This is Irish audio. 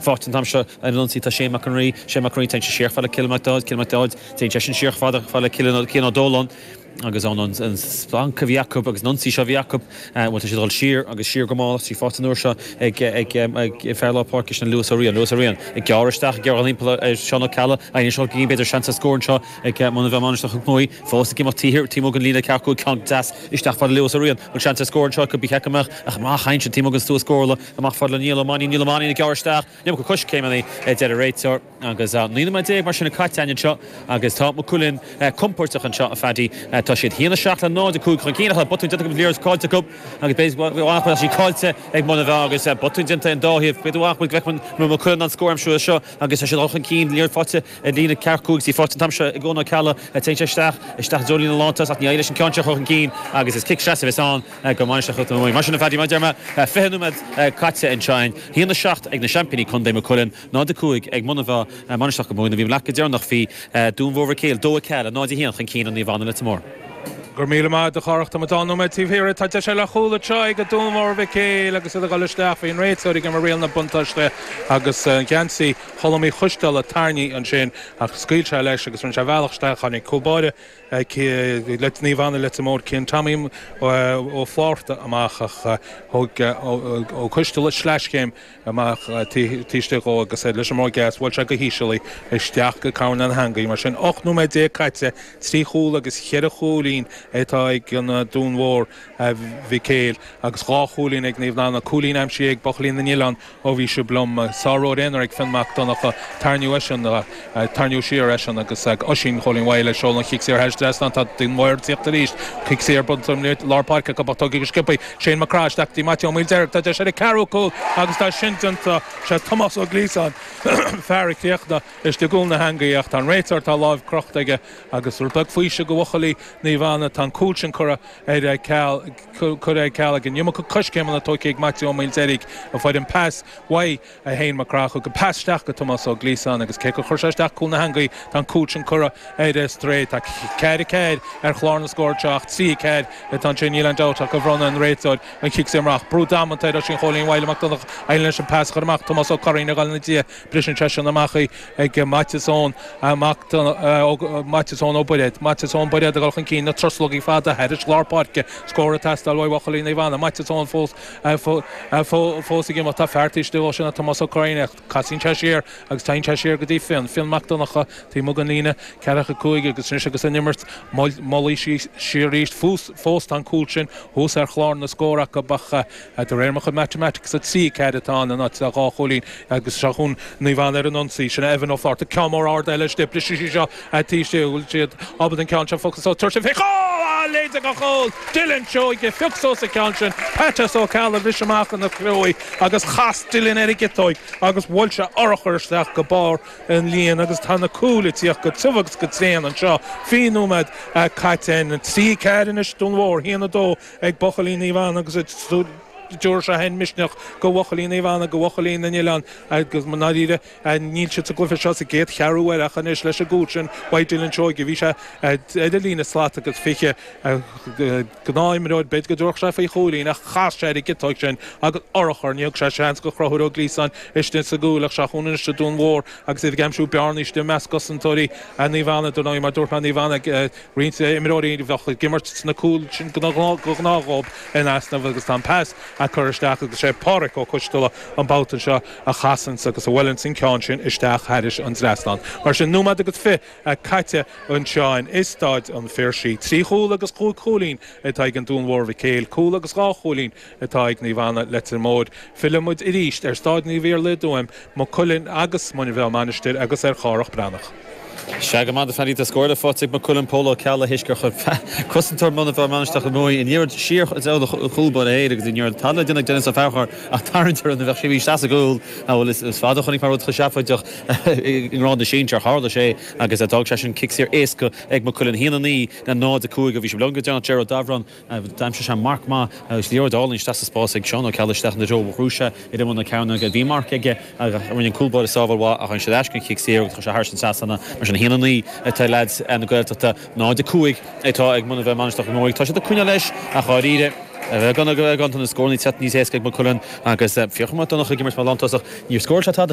Faighte an t-am seo ar an ionsaí tá Shane Mac an Rí, Shane Mac an Rí, téann sé siar fad le Cillian Mac Dáid, Cillian Mac Dáid, téann seisean siar fad fad le Cill Cian Ó Dóláin agus an an an splanc a bhí acu agus an ionsaí seo a bhí acu bhuel tá siad dul siar agus siar go mall í faighte an uair seo ag ag ag fear lár páirce sin Lewis Ó Riain, Lewis Ó Riain, ag gearradh isteach ag gearradh thimpeall ar ar Seán Ó Ceallaigh, Aidhin Seán Cinnlín b'fhéidir seans ar scór anseo ag Muine Mheá Mainistir Chnoc Muaí fós ag imeacht T T Morgan líne ceart go bhfuil ceann deas isteach fad le Lewis Ó Riain, bhfuil seans ar scór anseo could be theach go mbeadh ach amach Aidhin Seán T Morgan is tú a scórála. Amach fada le Niall Ó Mainnín. Niall Ó Mainnín ag gearradh isteach. An iomarca coiscéimeanna a deir an réiteoir. Agus 19 nóiméad mar sin caite againn anseo agus tá Maigh Cuilinn compóirteach anseo, a Phaddy. Tá siad 1, 7 le 0, 5 chun cinn ach tá botún déanta acu, liathróid cáillte acu agus b'fhéidir go bhfaighfear leithscéal cáillte ag Muine Mheá agus botún déanta in dá thaobh. B'fhéidir go bhfaighfidh Lecmon nó Maigh Cuilinn an scór an t-am seo agus tá siad 2 chun cinn, liathróid faighte ag líne ceart cúig tí faighte an t-am seo ag Eoghan Ó Ceallaigh. Téann sé isteach, isteach i dtreo líne lántosach. Ní éiríonn leis an ceann seo a chur chun cinn agus is cic seasaimh a bheas ann. ag Mainistir Chnoc Muaidhe. Mar sin a Phaddy, mar a deir mé, 20 nóiméad caite anseo againn, a haon a 7 ag na seaimpíní contae, Maigh Cuilinn, 0-5 ag Muine Mheá, Mainistir Chnoc Muaidhe Bhí leath go deireanach bhí Dún Mhór Mhic Éil, Dó Mhic Eala, 0-1 chun cinn ar Naomh Anna, Leitir Móir. Go raibh míle maith agat a Chárthaigh Tá muid dhá nóiméad taobh thiar Tá deis eile ar chúl an tráth ag Dún Mhór Mhic Éil agus iad a dhul isteach faoin réiteoir ag imir riail na buntáiste agus geansaí Cholm Uí Choisdeal á tarraingt ansin ach scaoil sé leis agus rinne sé a bhealach isteach tháinig cúl báire Naomh Anna Leitir Móir Cian Tommy Ó Flátharta amach ach thóg Ó Coistealla sleaschéim amach taobh istigh dhó agus é leis an mbróig dheas. Bhuail sé go híseal í, isteach go coirnéal na heangaí. Mar sin, 18 nóiméad caite, trí chúl agus cheithre chúilín atá ag an Dún Mhór Mhic Éil agus dhá chúilín ag Naomh Anna. Cúilín aimsithe ag buachaillí na nOileán Ó bhí sibh liom, sár-ród aonair ag Fionn Mac Donncha, tairníodh eisean, tairníodh siar eisean agus Oisín Chóilín Mhaidhle ag seoladh an chic saor thairis trasna tá Dún Mór ag tíocht ar ais, cic saor buailte amach i lár páirce acu ach tógtha go sciobtha Shane Mac Craith isteach go dtí Maitiú Ó Maoildeirg, tá deis ar an ceathrú cúl agus tá sin déanta. Sé Tomás Ó Gliasáin fear a chríochnaigh istigh i gcúl na heangaí ach tá an réiteoir, tá a láimh crochta aige agus rud beag faoiseamh do bhuachaillí Naomh Anna, tá an cúl sin curtha. ar ceal, curtha ar ceal an iomarca coiscéimeanna tógtha ag Maitiú Ó Maoildeirg a fuair an pas uaidh Shane Mac Craith thug pas isteach go Tomás Ó Gliasáin agus cé gur chuir sé isteach i gcúl na heangaí tá an cúl sin curtha ar strae. Tá ceathair a ceathair ar chlár na scór seo ach trí a ceathair atá ansin níl aon dabht ach gur bhronn an réiteoir an chic saor amach. Brú damanta ar Oisín Chóilín Mhaidhle Mac Donnchadha ach d'éirigh leis an pas a chur amach Tomás Ó Curraoin ag dul ina dhiaidh Briseann seisean amach í ag Maitias Eoin, mac Maitias Eoin Ó Bairéad. Maitias Eoin Bairéad ag dul chun cinn, na truslógaí fada thairis lár páirce, scór ag teastáil uaidh bhuachaillí Naomh Anna. Maitias Eoin fós ag imeacht, tá fear taobh istigh dhó sin, Tomás Ó Curraoin ach casaíonn sé siar agus téann sé siar go dtí Fionn, Fionn Mac Donncha, taobh amuigh den líne, ceathracha cúig agus anois agus an imirt moillithe síos arís, fós tá an cúl sin thuas ar chlár na scór acu ach. De réir mo chuid matamatics, 3 4 atá ann in áit le dhá chúilín agus seo chughainn Naomh Anna ar an ionsaí. Sin é Evan Ó Flatharta, ceann mór ard eile istigh. Brisfidh sé seo dhóibh taobh istigh. An bhfuil siad ábalta an ceann seo a phiocadh suas? Tabhair fé chúl! Á! A leithide go chúl! Dylan Seoige phioc suas an ceann sin. Peait Ó Ceallaigh bhris amach ina chomhair agus chas Dylan ar an gciotóig agus bhuail sé urchar isteach go barr an líon agus tá na cúil ag tíocht go tiubh agus go tréan anseo. Fiche nóiméad caite 3 4 anois don Dún Mhór. Haon a dó ag Buachaillí Naomh Anna agus tiúrfaidh seo féin misneach go Bhuachaillí Naomh Anna, go Bhuachaillí na nOileán agus i ndáiríre níl siad sa gcluiche seo sa gcéad cheathrú uaire ach anois leis an gcúl sin ag Dylan Seoige, bhí sé ar an líne slat agus fiche gnáthimreoir, b'fhéidir go dtabharfadh sé faoi chúilín ach chas sé ar an gciotóig sin agus urchar, ní thug sé seans go Chruthúir Ó Gliasáin istigh sa gcúl ach seo chugainn anois an Dún Mhór agus iad ag aimsiú bearnaí istigh i measc cosantóirí Naomh Anna, dar ndóigh mar dúirt mé Naomh Anna ag. Roinnt imreoirí a bheadh ag imirt sna cúil sin go gnáth dhóib in easnamh agus tá an pas curtha isteach agus sé Pádhraic Ó Coisteala an babhta seo a chasanns agus a bhuileanns an ceann sin isteach thairis an trasnán. Mar sin, nóimead agus fiche caite anseo i Stáid an Phiarsaigh. Trí chúl agus cúig chúilín atá ag an Dún Mhór Mhic Éil, cúl agus dhá chúilín, atá ag Naomh Anna, Leitir Móir. Fillfidh muid arís ar Stáid Naomh Iarlaith i dTuaim, Maigh Cuilinn agus Muine Mheá, Mainistir agus ar Chárthach Bán Breathnach. Sea, go raibh maith agat a Phaddy. Tá scór eile faighte ag Maigh Cuilinn, Pól Ó Ceallaigh, théis gur chuir cosantóir Mhuine Mheá, Mainistreach na Máighe, an liathróid siar i dtreo a chúl báire féin agus ní raibh tada le déanamh ag Denis Ó Fearchair ach tarraingt air nó bheadh sé imithe isteach sa gcúl. Is fada a chonaic mé rud chomh seafóideach i ngrád na sinsear. Tharla sé agus d'fhág sé sin cic saor éasca ag Maigh Cuilinn. 1, 9 le 0, 5 a bhí sé. Liom go deo, Ger Ó Daibhreán. D'aimsigh sé marc maith agus liathróid álainn isteach sa spás ag Seán Ó Ceallaigh isteach ina threo. Rug sé air ar imeall na cearnóige. Bhí marc aige ach rinne an cúl báire sábháil mhaith ach rinne siad aisce den chic saor agus chuir sé thairis an trasnán é. Mar sin 1-9 atá ag leaids na Gaeltachta, 0-5 atá ag Muine Mheá Mainistreach go Mórag. Tá siad ag coinneáil leis ach dháiríre tá na scóranna ag teacht níos éasca ag Maigh Cuilinn agus fiacha mhaith Donnacha ag imirt mar lántosach. Níor scóráil sé tada.